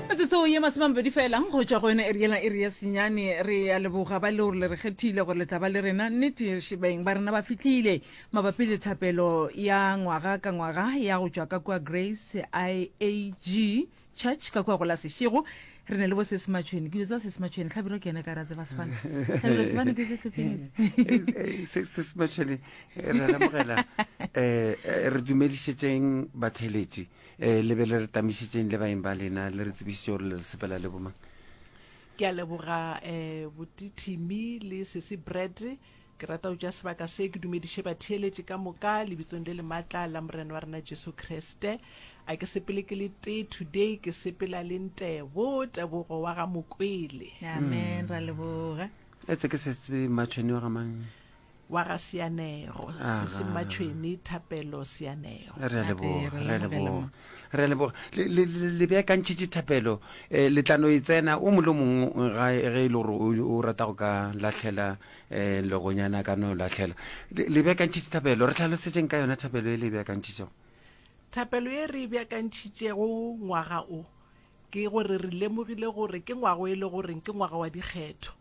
metsotso ye masomamabedi fela go tšwa go yone e riela e re ya senyane re ya leboga ba leo le re kgethile gore le tla ba le rena nnete šebeng ba rena ba fitlhile mabapi le thapelo ya ngwaga ka ngwaga ya go tšwa ka kua grace iag church ka kua go la sešego re ne le bo sesimatšhweni ke botsa sesimatšhweni tlhabiro ke yone ka ra tseba sefane tlhabiro sefane ke se sesimatšhweni re lemogela um re dumedišetseng batheletši e le be le re tamišitseng le baeng ba lena le re tsebišitše gore le re sepela le bomang ke a leboga um botithimi le sese bread ke rata go tša sebaka se ke dumediše batheeletše ka moka lebitsong le le matla la morena wa rena jesu kriste a ke sepele ke le tee today ke sepela le ntebo tebogo wa ga mokwele amen ra leboga etse ke setse matšhoni wa gamang wa ga Seanego sese Mmatšhweni Thapelo Seanego re a leboga re a leboga re a leboga Le- le- le- le beakantšhitše thapelo um letlano e tsena o mole o mongwe ga ge e le gore o- o rata go ka lahlela um legonyana a ka no lahlela Le- le beakantšhitše thapelo re tlhalosetšeng ka yona thapelo e le e beakantšhitšego thapelo ye re e beakantšhitšego ngwaga o ke gore re lemogile gore ke ngwago e le goreng ke ngwaga wa dikgetho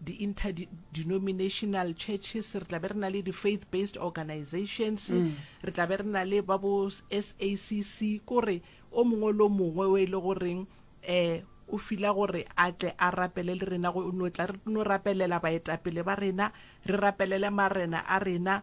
di-interdenominational churches re tla be re na le di-faith based organizations re tla be re na le ba bo sacc kore o mongwe le o mongwe o e le goreng um o fila gore a tle a rapele le rena no tla re no rapelela baetapele ba rena re rapelele marena a rena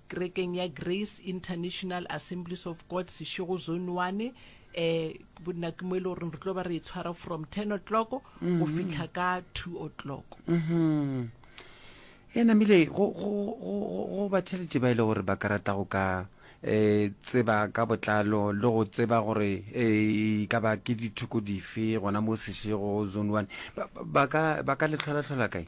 Kerekeng ya Grace International Assemblies of God Seshego Zone One. Um nako mo e le goreng re tlo ba re e tshwara from ten o'clock go mm-hmm. fitlha ka two o'clock mm-hmm. e namile go batheletše ba e le gore ba ka rata go ka eh tseba ka botlalo le go tseba gore eh ka ba ke dithoko dife gona mo seshego zone one ba ka ba ka le tlhola tlhola kae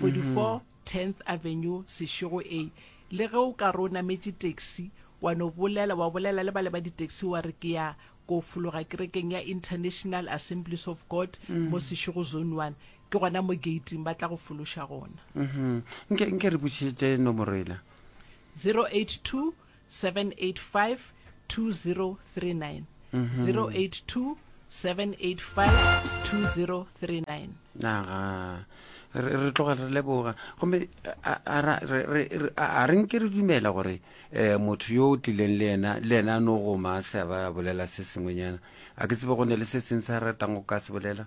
44 Tenth Avenue, Seshego A, Le ge o ka re o nametše taxi, wa no bolela, wa bolela le bale ba di-taxi wa re ke ya ko fologa kerekeng ya International Assemblies of God mo Seshego Zone One, ke gona mo gate-ing ba tla go fološa gona. Nke, nke re botšišetše nomoro yela. 082 785 2039 082 785 2039 re tloga re leboga gomme a re nke re dumela gore um motho yo o tlileng le ena le ena a no goma a se a ba bolela se sengwenyana a ke tsebe go ne le se seng se a ratang go ka se bolela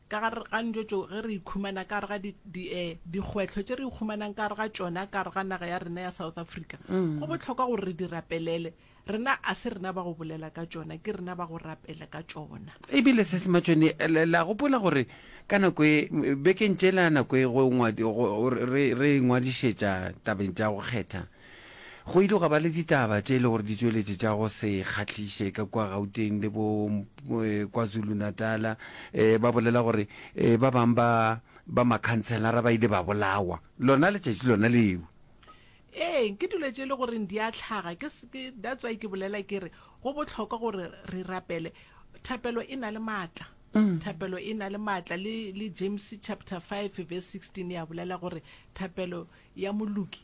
Ka gare ga dijo tšeo ge re ikhumana ka gare ga di, di, eh, dikgwetlho tše re ikhumanang ka gare ga tšona ka gare ga naga ya rena ya South Africa, go bohlokwa gore re di rapelele. Rena a se rena ba go bolela ka tšona, ke rena ba go rapela ka tšona. E bile se se matšone. La, la gopola gore ka nako e, bekeng tšela nako e go ngwadi, go, re, re ingwadišetša tabeng tša go kgetha, Go ile gwa ba le ditaba tše e le gore di tšweletše tša go se kgahliše ka kua Gauteng le bo KwaZulu-Natal. Ba bolela gore ba bang ba ba makhantshelara ba ile ba bolawa lona letšatši lona leo. Ee, ke dilo tše e le goreng di a hlaga. Ke that's why ke bolela ke re go bohlokwa gore re rapele. Thapelo e na le maatla. Thapelo e na le maatla le le James chapter five verse sixteen ya bolela gore thapelo ya moloki